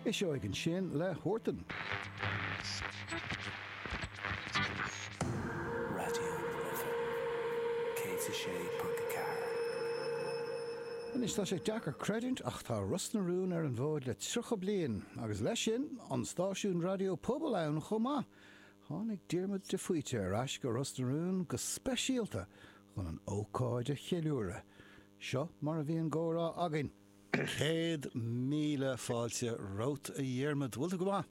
Uiseog ansin le Huartan. Anois tá sé deacair creidiúint ach tá Ros na Rún ar an bhfód le 30 bliain agus leis sin an stáisiún raidió pobail ann chomh maith. Tháinig Diarmuid de Faoite ar ais go Ros na Rún go speisialta chun an ócáid a cheiliúradh. Seo mar a bhí an comhrá againn. Céad míle fáilte romhat, a Dhiarmaid. Bhfuil tú go maith?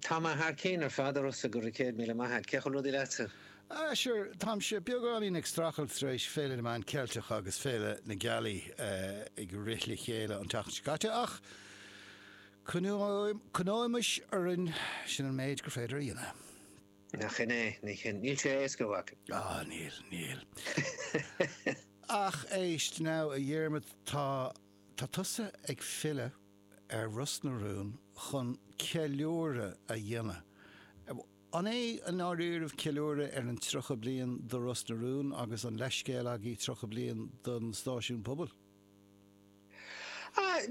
Tá mé thar cionn ar fad, a Rossa, go raibh céad míle maith a't. Cén chaoi a bhfuil rudaí leatsa? Ah, sure, táimse beagáinín ag strachailt tar éis Féile na Meán Ceilteach agus Féile na Gealaí ag rith le chéile an taca seo caite, ach coinneoimis orainn, sin an méid gur féidir a dhéanamh. Nach in é, nach in. Níl sé éasca a mhac. Ah, níl, níl. Ach éist now, a Dhiarmaid, tá, tá tusa ag filleadh ar Ros na Rún chun ceiliúradh a dhéanamh. An é i ndáiríribh ceiliúradh ar an tríocha bliain de Ros na Rún agus an leithscéal agaibh tríocha bliain don stáisiún pobail?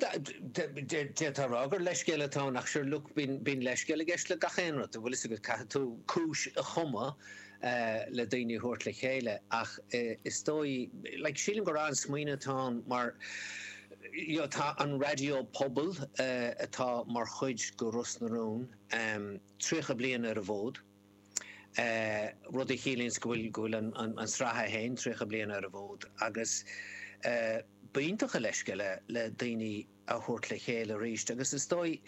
D'fhéadfá rá gur leithscéal atá ann, ach sure, look, bíonn leithscéal i gceist le gach aon rud, an bhfuil fhios agat. Caithfidh tú cúis a chumadh le daoine a thabhairt le chéile. Ach is dóigh, like, sílim gur an-smaoineamh atá ann mar, you know, tá an raidió pobail, atá mar chuid de Ros na Rún, 30 bliain ar an bhfód. rud a chiallaíonns go bhfuil an tsraith féin 30 bliain ar an bhfód agus b'iontach an leithscéal é le daoine a thabhairt le chéile arís agus is dóigh,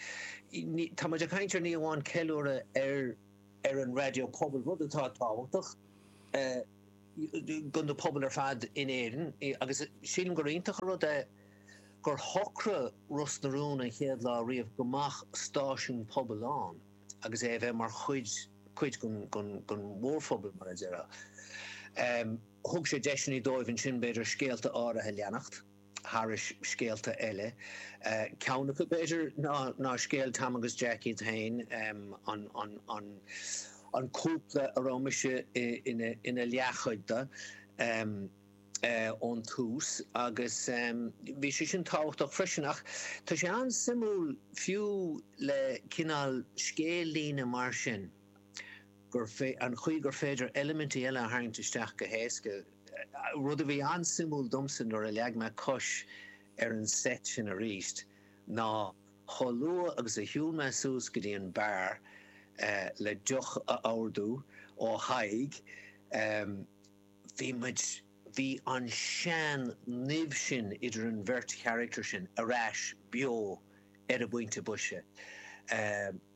tá muid ag caint ar ní amháin ceiliúradh ar an raidió pobail, rud atá tábhachtach do na pobail ar fad in Éirinn agus sílim gur iontach an rud é gur shocraigh Ros na Rún an chéad lá riamh go mbeadh stáisiún pobail ann. agus é a bheith mar chuid, cuid den, den mhórphobal, mar a déarfá. Thug sé deiseanna dóibh ansin, b'fhéidir, scéalta áirithe a leanacht, thairis scéalta eile. Ceann acu, b'fhéidir, ná, ná scéal Tom agus Jack iad féin, an, an, an, an cúpla a raibh mise ina, ina leathchuid de. ón tús agus bhí sé sin tábhachtach freisin. Ach tá sé an-suimiúil fiú le cineál scéal-líne mar sin gur, an chaoi gur féidir eilimintí eile a tharraingt isteach go héasca. Rud a bhí an-suimiúil domsa nuair a leag mé cos ar an seit sin arís ná chomh luath agus a shiúil mé suas go dtí an beár le deoch a ordú ó Thadhg, bhí muid, bhí an sean nimh sin idir an bheirt charachtar sin ar ais beo ar an bpointe boise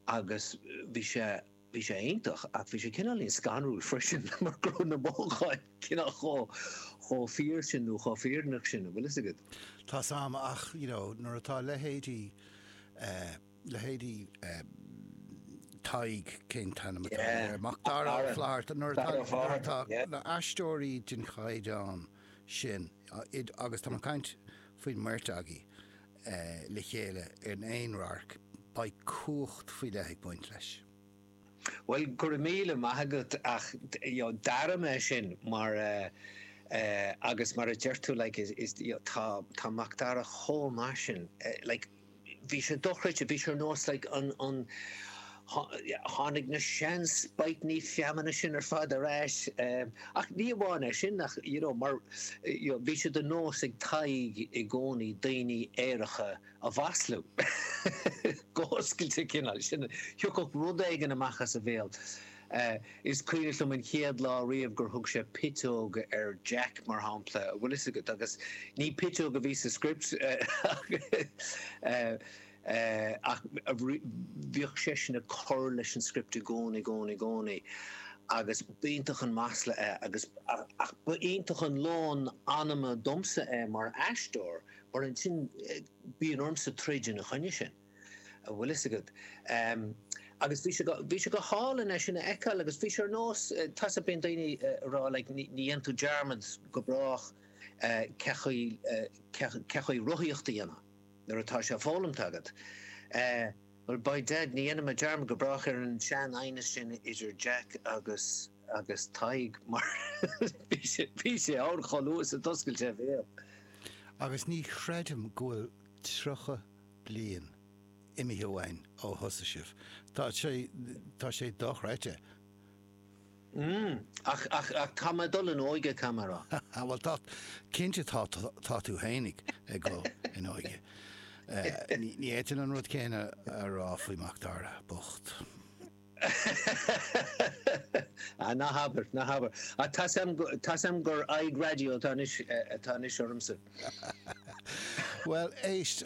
agus bhí sé, bhí sé iontach ach bhí sé cineáilín scanrúil freisin mar go raibh na mothúcháin cineál chomh, chomh fíor sin nó chomh fírinneach sin an bhfuil fhios agat. Tá 's 'am ach you know nuair atá leithéidí eh. leithéidí Tadhg, cén t-ainm atá air, Macdara Ó Fátharta, nuair atá na haisteoirí den chaighdeán sin agus tá mé ag caint faoin mbeirt agaí le chéile in aon radharc, beidh cumhacht faoi leith ag baint leis. Bhuel, go raibh míle maith agat ach d'airigh mé sin mar agus mar a deir tú like is tá Macdara chomh maith sin like, Bhí sé dochreidte, bhí sé ar nós, like, an, an, tháinig na sean spaightní feamainne sin ar fad ar ais, ach ní amháin é sin ach, you know, mar, you know, bhí sé de nós ag Tadhg i gcónaí daoine aeracha a mhaslú, go hoscailte cineál, sin, thiocfadh rud éigin amach as a bhéal. Is cuimhneach liom an chéad lá riamh gur thug sé piteog ar Jack, mar shampla, a bhfuil fhios agat, agus ní piteog a bhí sa script ach bhíodh seisean ag cur leis an script i gcónaí, i gcónaí, i gcónaí agus b'iontach an masla é agus, ach ba iontach an lón anama domsa é mar aisteoir mar ansin bíonn ormsa troid ina choinne sin. a bhfuil fhios agat. Agus bhí sé, bhí sé go hálainn é sin a fheiceáil agus bhí sé ar nós, tá 's agat bíonn daoine ag rá like ní dhéanann tú dearmad go brách cén chaoi, cén chaoi rothaíocht a dhéanamh nuair atá sé foghlamta agat. Bhuel by dad ní dhéanfaidh mé dearmad go brách ar an sean aighneas sin idir Jack agus, agus Tadhg mar bhí sé, bhí sé ann chomh luath is a d'oscail sé a bhéal. Agus ní chreidim go bhfuil tríocha bliain imithe uainn ó thosaigh sibh. Tá sé, tá sé dochreidte. Mm, ach, ach, ach tá mé ag dul in óige, caithfidh mé a rá. Ah, bhuel, tá, cinnte tá, tá tú féin ag, ag dul in óige. Eh, ní, ní fhéadfainn an rud céanna a rá faoi Macdara, bocht. Ah, ná habair, ná habair. Ah, tá 's a'm go, tá 's a'm gur aghaidh raidió atá anois, eh, atá anois ormsa. Bhuel, éist,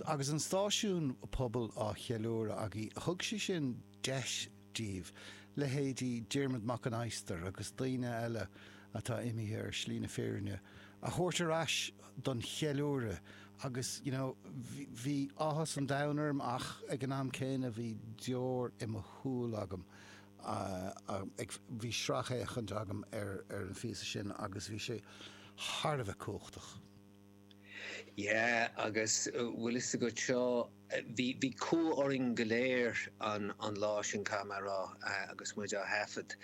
agus an stáisiún pobail á cheiliúradh agaibh, thug sé sin deis daoibh, leithéidí Diarmuid Mac an Adhastair agus daoine eile atá imithe ar shlí na fírinne, a thabhairt ar ais don cheiliúradh, Agus, you know, bhí áthas an domhain orm ach ag an am céanna bhí deoir i mo shúil agam. Bhí sracfhéachaint agam ar an phíosa sin agus bhí sé thar a bheith cumhachtach. Yeah, agus bhfuil fhios agat seo? Bhí cumha orainn go léir an lá sin, caithfidh mé a rá, agus muid á thaifead.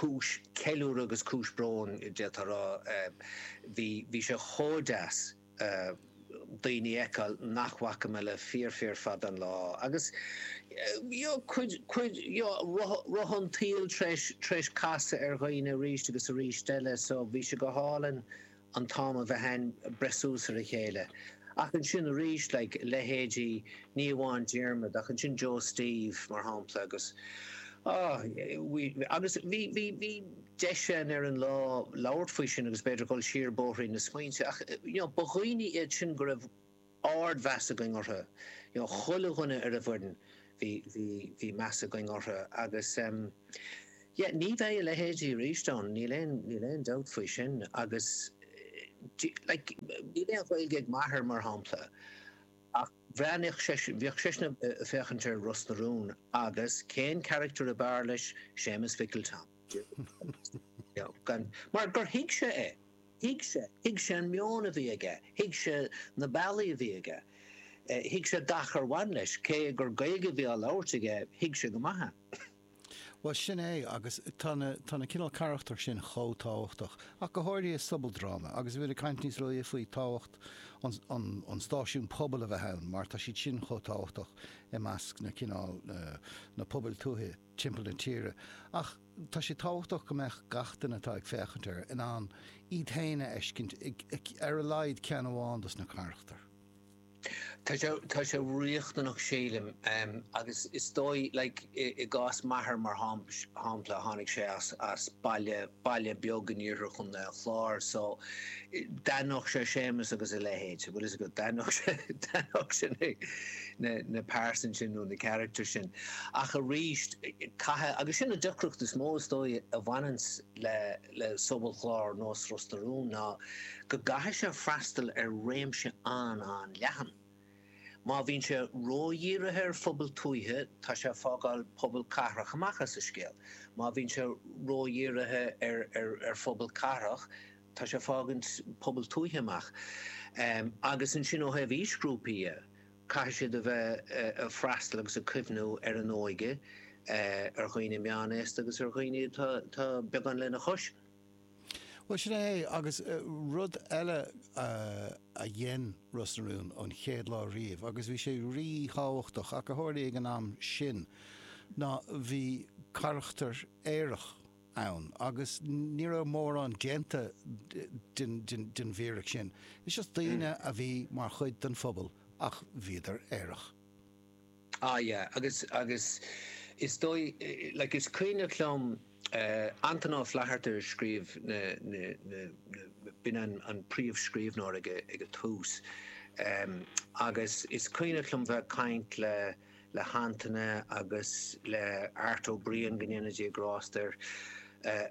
Cúis ceiliúradh agus cúis bróin, d'fhéadfá a rá. Bhí sé chomh deas daoine a fheiceáil nach bhfaca mé le fíor fíor fada an lá agus cuid roth an tsaoil tar éis casadh ar dhaoine arís agus arís eile, so bhí sé go hálainn. an t-am a bheith ann breith suas ar a chéile. Ach ansin arís, like, leithéidí, ní amháin Diarmaid, ach ansin Joe Steve, mar shampla, agus, ah, agus bhí, bhí, bhí deis ann ar an lá labhairt faoi sin agus b'fhéidir dul siar bóithrín na smaointe ach, you know, ba dhaoine iad sin go raibh, ard-mheas againn orthu, you know chuile dhuine ar an bhfoireann, bhí, bhí, bhí meas againn orthu agus em yeah ní bheidh a leithéidí arís ann, níl aon, níl aon dabht faoi sin agus eh like níl aon Ghaeilge ag m'athair mar shampla ach bhreathnaíodh seisean, bhíodh seisean a' féachaint ar Ros na Rún agus cén character ab fhearr leis, Séamus Mhicil Tom. Mar gur thuig sé é. Thuig sé. Thuig sé an meon a bhí aige. Thuig sé na bealaí a bhí aige. Thuig sé gach ar bhain leis. Cé gur Gaeilge a bhí á labhairt aige, thuig sé go maith é. Bhuel, sin é. Agus tá, tá na cineál carachtar sin chomh tábhachtach, ach go háirithe i sobaldráma. Agus bhí mé ag caint níos luaithe faoi tábhacht an stáisiún pobail a bheith ann, mar tá siad sin chomh tábhachtach i measc na cineál, na pobail tuaithe. timpeall na tíre, ach tá sé tábhachtach go mbeadh gach duine atá ag féachaint air in ann iad féin a fheiscint i ar a laghad ceann amháin dos na carachtair. Tá sé riachtanach sílim agus is dóigh like i gcás m'athair mar shampla tháinig sé as baile, baile beag in iarthar chontae an Chláir so d'aithneodh sé Séamus agus a leithéid, bhfuil 'fhios agat, d'aithneodh sé na pearsain sin nó na characters sin ach arís caithfidh, agus sin an deacracht is mó is dóigh a bhaineann le sobalchlár nós Ros na Rún ná go gcaithfidh sé freastal ar réimse an-an-leathan. Má bhíonn sé ródhírithe ar phobail tuaithe, tá sé ag fágáil pobail cathrach amach as an scéal. Má bhíonn sé ródhírithe ar phobail cathrach, tá sé ag fágaint pobail tuaithe amach. Agus ansin ó thaobh aoisghrúpaí dhe, caithfidh siad a bheith ag freastal agus ag cuimhniú ar an óige, ar dhaoine meánaosta agus ar dhaoine atá beagán lena chois. Bhuel, sin é é. Agus rud eile a dhein Ros na Rún ón chéad lá riamh, agus bhí sé rí-thábhachtach ach a tharlaigh ag an am sin, ná bhí carachtar aerach ann agus ní raibh mórán déanta den bhfíric sin. Is just daoine a bhí mar chuid den phobal ach bhíodar aerach. Ah yeah agus, agus is dóigh, like is cuimhneach liom Antaine Ó Flatharta a scríobh na, na, na, na, b'in an, an príomhscríbhneoir ag a, ag an tús ehm agus is cuimhneach liom bheith ag caint le, le hAntaine agus le Art Ó Briain, go ndéana Dia grásta air,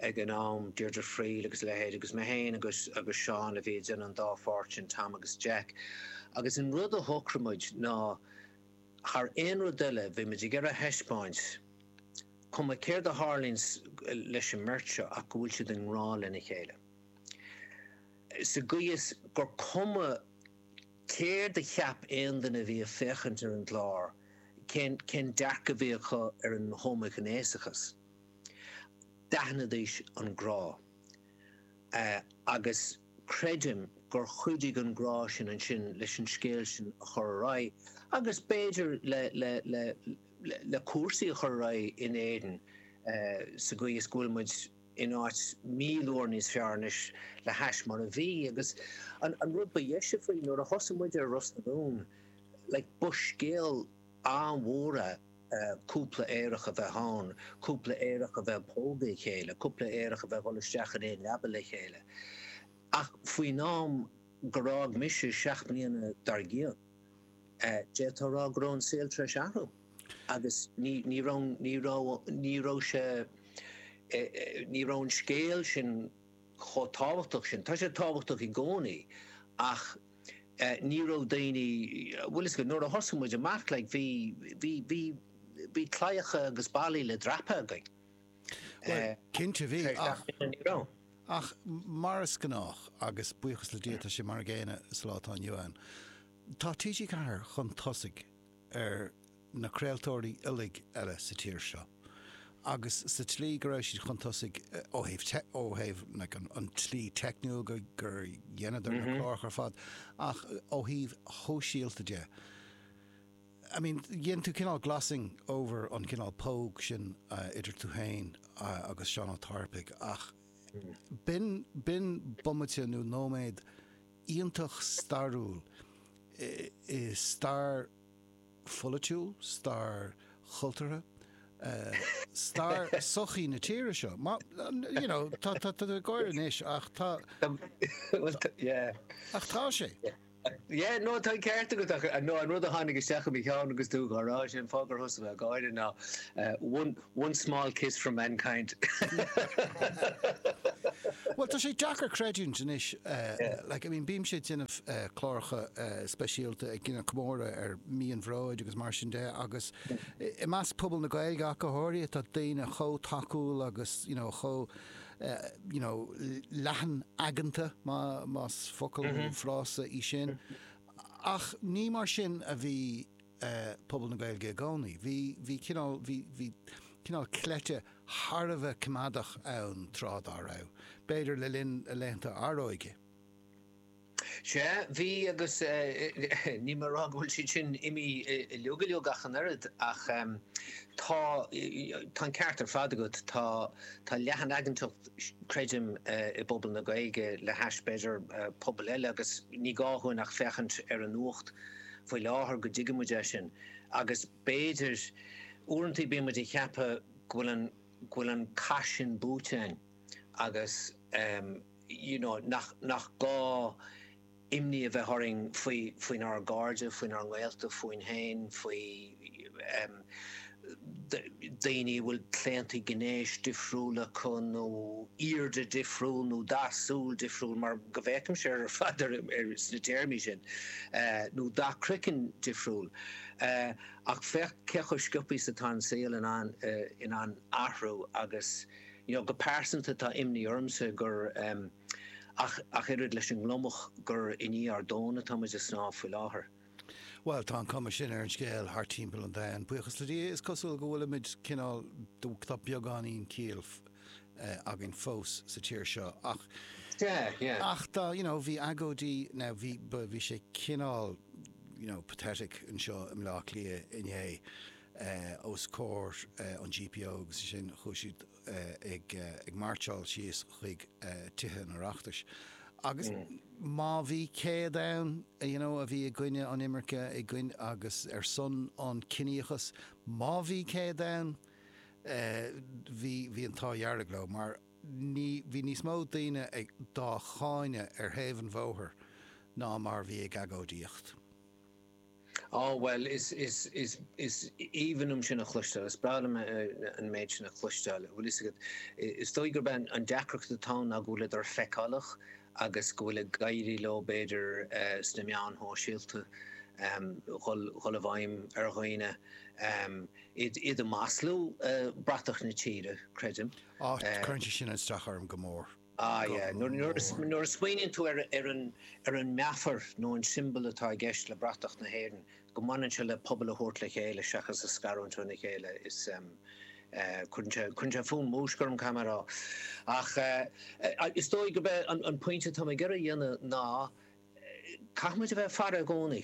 ag an am, Deirdre Friel agus a leithéid agus mé féin agus, agus Seán a bhí ag déanamh an dá pháirt sin, Tom agus Jack agus an rud a shocraigh muid ná, Thar aon rud eile, bhí muid ag iarraidh a thaispeáint, cuma céard a tharlaíonn leis an mbeirt seo, ach go bhfuil siad i ngrá lena chéile. Sa gcaoi is gur cuma céard a cheap aon duine a bhí ag féachaint ar an gclár, cén dearcadh a bhí acu ar an homaighnéasachas, d'aithnidís an grá. Agus. Creidim gur chuidigh an grá sin ansin leis an scéal sin a chur ar aghaidh agus b'fhéidir le cúrsaí a chur ar aghaidh in Éirinn sa gcaoi is go bhfuil muid in áit míle uair níos fearr anois le hais mar a bhí. Agus an rud ba dheise faoi, nuair a thosaigh muid ar Ros na Rún, like, ba scéal an-mhór é. cúpla aerach a bheith ann, cúpla aerach a bheith ag pógadh a chéile, cúpla aerach a bheith ag dhul isteach in aon leaba le chéile. Ach faoin am gur fhág mise seacht mbliana dár gcionn, d'fhéadfá a rá go raibh an saol tar éis athrú agus ní raibh, ní raibh, ní raibh sé, ní raibh an scéal sin chomh tábhachtach sin. Tá sé tábhachtach i gcónaí ach Ní raibh daoine, bhuel fiú is go nuair a thosaigh muid amach like bhí, bhí, bhí, bhí claíocha agus ballaí le dreapadh againn. Bhuel, cinnte bhí, ach, ach mar is gnách, agus buíochas le Dia tá sé mar an gcéanna sa lá atá inniu ann, tá TG4 chun tosaigh. ar na craoltóirí uilig eile sa tír seo agus sa tslí go raibh siad chun tosaigh ó thaobh, ó thaobh an tslí teicniúil gur dheineadar na cláracha ar fad, ach ó thaobh shóisialta de. I mean, dhein tú cineál glossing over an cineál póg sin idir tú féin agus Seán Ó Tairpigh ach b'in, b'in bomaite nó nóiméad, iontach stairiúil i stair pholaitiúil, stair chultúrtha, stair sochaí na tíre seo. You know, tá tú ag gáire anois ach tá. Bhuel, yeah. Ach tá sé. Yeah, no, tá an ceart agat. No, an rud a tháinig isteach i mo cheann agus tú dhá rá sin, fágadh tusa bheith ag gáire, ná, One small kiss from mankind. Bhuel, tá sé deacair creidiúint anois, like, I mean, bímse ag déanamh cláracha speisialta ag déanamh comóradh ar mí an Bhróid agus mar sin de agus i measc pobal na Gaeilge ach go háirithe tá daoine chomh tacúil agus, you know, chomh, you know, leathan-aigeanta, más, más focal nó frása í sin, ach ní mar sin a bhí. pobal na Gaeilge i gcónaí. Bhí, bhí cineál, bhí, bhí cineál cleite thar a bheith coimeádach ann tráth dá raibh, b'fhéidir le linn a laethanta Atróige. Sea, bhí agus níl mé a rá go bhfuil siad sin imithe uilig, uilig ach an oiread ach tá, tá an ceart ar fad agat, tá, tá leathan-aigeantacht creidim i bpobal na Gaeilge le hais b'fhéidir pobail eile agus ní gá dhúinn ach féachaint ar an nuacht faoi láthair go dtuigfidh muid é sin agus b'fhéidir uaireanta bíonn muid ag ceapadh go bhfuil an go bhfuil an cath sin buaite againn agus you know nach nach gá imní a bheith orainn faoi faoin ár gcairde faoin ár ngaolta fúinn féin faoi daoine a bhfuil claonta gnéis difriúil acu nó airde difriúil nó dath súl difriúil, mar go bhféachaimse air ar fad sna téarmaí sin, nó dath croiceann difriúil. Ach féach cé chomh sciobtha is atá an saol in ann athrú agus, you know, go pearsanta tá imní ormsa gur ach oiread leis an ngliomach gur i ndiaidh ár dtóin atáimid ag snámh faoi láthair. Bhuel, tá an cuma sin ar an scéal thart timpeall an domhain, buíochas le Dia, is cosúil go bhfuilimid cineál, tá beagáinín ciall againn fós sa tír seo ach, ach tá, you know, bhí agóidí, now bhí, bhí sé cineál, you know, pathetic anseo i mBleá Cliath inné os comhair an GPO agus ansin chuaigh siad, ag máirseáil síos chuig Tithe an Oireachtais agus má bhí 100 ann you know a bhí i gcoinne an imirce i gcoinne agus ar son an ciníochas má bhí 100 ann bhí bhí an t-ádh dhearg leo mar bhí níos mó daoine ag dá cháineadh ar thaobh an bhóthair ná mar bhí ag agóidíocht. Á, bhuel, is, is, is, is aoibhinn liom sin a chloisteáil, is breá liom an méid sin a chloisteáil. Bhuel, fhios agat, is dóigh gurb é an deacracht atá ann ná go bhfuileadar feiceálach agus go bhfuil ag éirí leo, b'fhéidir, sna meáin shóisialta, dhul, dhul i bhfeidhm ar dhaoine, iad, iad a mhaslú, bratach na tíre, creidim. Á, cuireann sé sin aistreachas orm go mór. Ah yeah, nuair a smaoiníonn tú ar an meafar nó an siombal atá i gceist le bratach na hÉireann, go mbaineann sé le pobal a thabhairt le chéile seachas a scarúint óna chéile, is ehm, eh, cuireann sé fonn múisce orm caithfidh mé a rá. Ach eh, is dóigh gurb é an pointe atá mé ag iarraidh a dhéanamh ná, Caithfidh muid a bheith ag faire i gcónaí.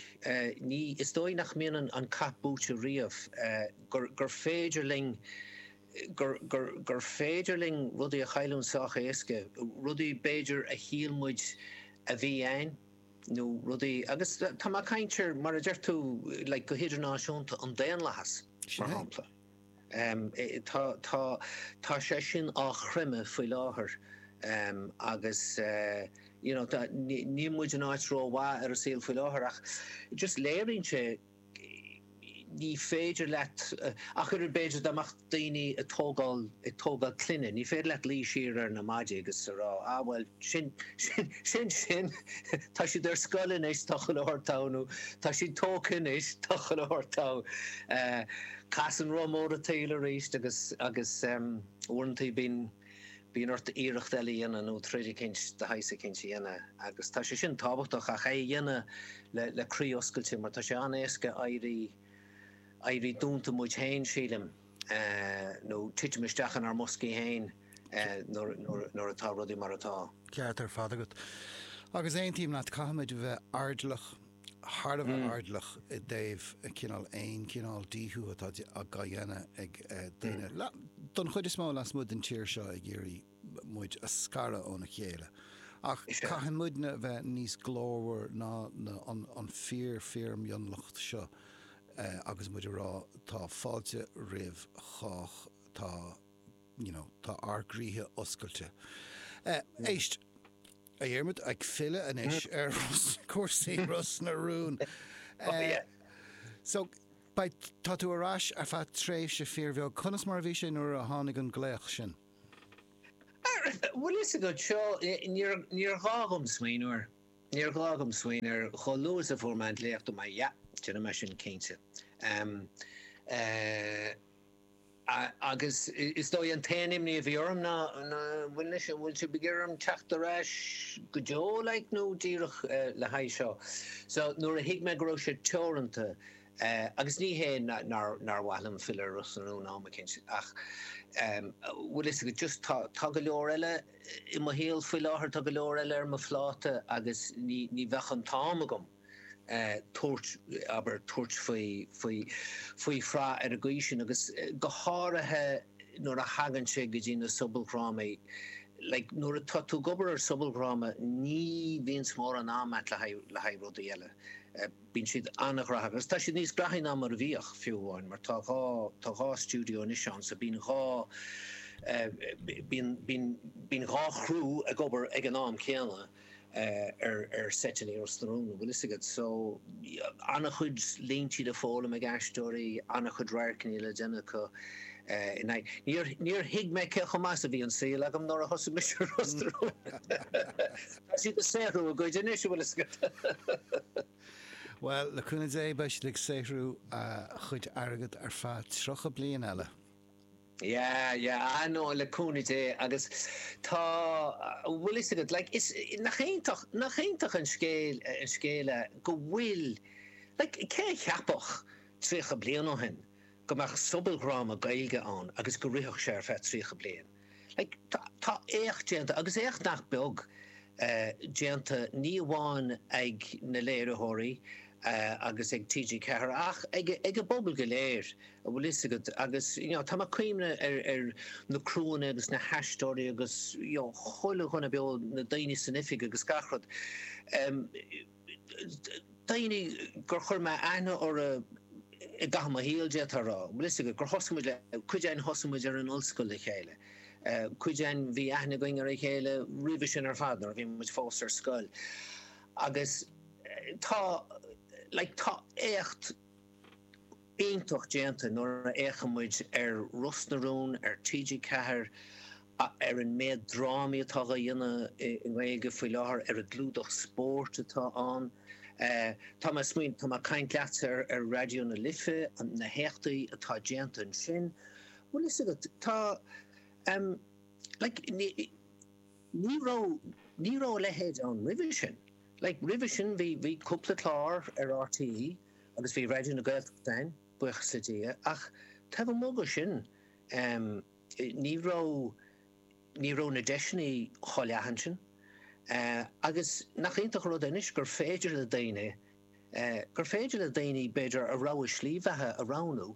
Ní, is dóigh nach mbíonn an cath buaite riamh, gur, gur féidir linn, gur, gur, gur féidir linn rudaí a chailliúint sách éasca, rudaí b'fhéidir a shíl muid a bhí a'ainn nó rudaí agus tá mé ag caint ar, mar a deir tú, like, go hidirnáisiúnta, an daonlathas, mar shampla. Tá sé sin á chreimeadh faoi láthair agus you know níl muid in áit rómhaith ar an saol faoi láthair ach just léiríonn sé ní féidir leat ach oiread le b'fhéidir dá mbeadh daoine ag tógáil ag tógáil clainne, ní féidir leat luí siar ar na maidí agus a rá, ah bhuel, sin sin sin sin tá siad ar scoil anois tá chuile shórt togha nó tá siad tógtha anois tá chuile shórt togha. Eh, Casann roth mór an tsaoil arís agus agus em, uaireanta bíonn bíonn ort iarracht eile a dhéanamh nó troid eicint de shaghas eicint a dhéanamh agus tá sé sin tábhachtach ach é a dhéanamh le le croí oscailte mar tá sé an-éasca éirí éirí dúnta muid féin sílim. nó titim isteach inár mboscaí féin nuair atá rudaí mar atá. Ceart ar fad agat. Agus aontaím leat, caithfimid a bheith airdeallach, thar a bheith airdeallach i dtaobh cineál aon chineál díothú atá á dhéanamh ag daoine, don chuid is mó, lasmuigh den tír seo ag iarraidh muid a scaradh óna chéile. Ach caithfidh muidne a bheith níos glórmhar ná an fíor-fíormhionlach seo agus muid a rá, tá fáilte roimh chách, tá you know tá ár gcroíthe oscailte. Éist, a Dhiarmuid, ag filleadh anois ar chúrsaí Ros na Rún. So, beidh, tá tú ar ais ar feadh tréimhse fíorbheag. Conas mar a bhí sé nuair a tháinig an glaoch sin? Bhfuil fhios agat, seo, níor ghá dhom smaoineamh air, níor ghá dhom smaoineamh air, chomh luath is a fuair mé an glaoch, ó, yeah, déanfaidh mé sin cinnte. Agus is dóigh an t-aon imní a bhí orm ná, bhfuil fhios agat, an bhfuil sibh ag iarraidh orm teacht ar ais go deo, like, nó díreach le haghaidh seo? So, nuair a thuig mé go raibh sé teoranta, É, agus ní hé nár mhaith liom filleadh ar Ros na Rún am eicínt, ach bhfuil fhios agat, just tá, tá go leor eile i mo shaol faoi láthair, tá go leor eile ar mo phláta agus ní, ní bheadh an t-am agam, tabhairt, abair, tabhairt faoi, faoi, faoi shraith ar an gcaoi sin agus go háirithe nuair a thagann sé go dtí na sobaldhrámaí, like nuair atá tú ag obair ar shobaldhráma ní bhíonns mórán am a'at le haghaidh, le haghaidh rudaí eile. Bíonn siad an-ghraitheach agus tá siad níos graithí ná mar a bhíodh, fiú amháin, mar tá dhá, tá dhá stiúideo anois ann so bíonn dhá eh, bíonn, bíonn, bíonn dhá chriú ag obair, ag an am céanna eh, ar, ar seiteanna i Ros na Rún, an bhfuil 'fhios agat. So, yeah, an-chuid líntí le foghlaim ag aisteoirí, an-chuid radharcanna le déanamh acu eh, in aghaidh, níor, níor thuig mé cé chomh deas is a bhí an saol agam nuair a thosaigh mise i Ros na Rún. Tá siad ag saothrú a gcuid anois, a bhfuil fhios agat. Bhuel, le cúnamh Dé, beidh siad ag saothrú a gcuid airgead ar feadh tríocha bliain eile. Yeah, yeah, ah no, le cúnamh Dé agus tá, a bhfuil fhios agat, like, is, nach iontach, nach iontach an scéal, an scéal é go bhfuil, like, cé a cheapfadh tríocha bliain ó shin go mbeadh sobaldhráma Gaeilge ann agus go rithfeadh sé ar feadh tríocha bliain? Tá éacht déanta, agus éacht nach beag déanta, ní amháin ag na léiritheoirí agus ag TG4 ach ag an bpobal go léir, an bhfuil fhios agat, agus tá mé ag cuimhneamh ar na criúanna agus na haisteoirí agus chuile dhuine beo, na daoine san oifig agus gach rud. daoine gur chuir mé aithne orthu i gcaitheamh mo shaoil, d'fhéadfá a rá. Bhfuil fhios agat, gur thosaigh muid le, cuid againn thosaigh muid ar an ollscoil le chéile, cuid againn bhí aithne againn ar a chéile roimhe sin ar fad, nuair a bhí muid fós ar scoil. Agus tá, like, tá éacht. iontach déanta nuair a fheiceann muid ar Ros na Rún ar TG4, ar an méad drámaí atá dhá ndéanamh i nGaeilge faoi láthair, ar an gclúdach spóirt atá ann. Tá mé ag smaoin, tá mé ag caint leatsa ar Raidió na Life, na héachtaí atá déanta ansin. Bhfuil fhios agat, tá, em, like, ní raibh, ní raibh a leithéid ann roimhe sin. Like, roimhe sin bhí, bhí cúpla clár ar RTÉ agus bhí Raidió na Gaeltachta ann, buíochas le Dia, ach taobh amuigh de sin em ní raibh, ní raibh na deiseanna chomh leathan sin. Eh agus nach iontach an rud é anois gur féidir le daoine eh, gur féidir le daoine b'fhéidir a rogha slí bheatha a roghnú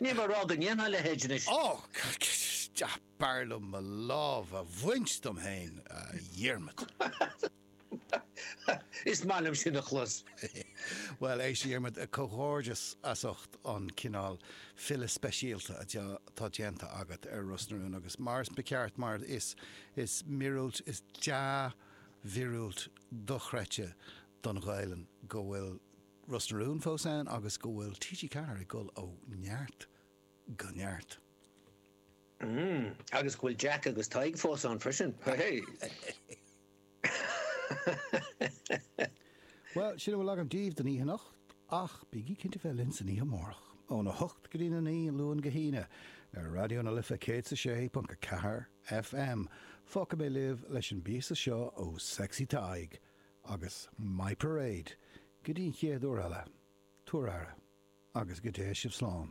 Níl mé ag rá go ndéanfadh a leithéid anois. Ó! B'fhearr liom mo lámh a bhaint dom féin, a Dhiarmaid. Is maith liom sin a chlos. Bhuel, éist, a Dhiarmaid, comhghairdeas as ucht an cineál filleadh speisialta atá déanta agat ar Ros na Rún agus, mar is ceart, mar is, is míorúilt, is dea-mhíorúilt dochreidte don Ghaelainn go bhfuil Ros na Rún fós ann agus go bhfuil TG4 ag dul ó neart go neart. Mmm, agus go bhfuil Jack agus Tadhg fós ann freisin, hé! Bhuel, sin a bhfuil agam daoibh don oíche anocht, ach bígí cinnte a bheith linn san oíche amárach, ón 8 go dtí na 9, ón Luan go hAoine, ar Raidió na Life 106.4 FM. Fágfaidh mé libh leis an bpíosa seo ó Sexy Tadhg, Agus My Parade! Go dtí an chéad uair eile, tabhair aire, agus go dté sibh slán.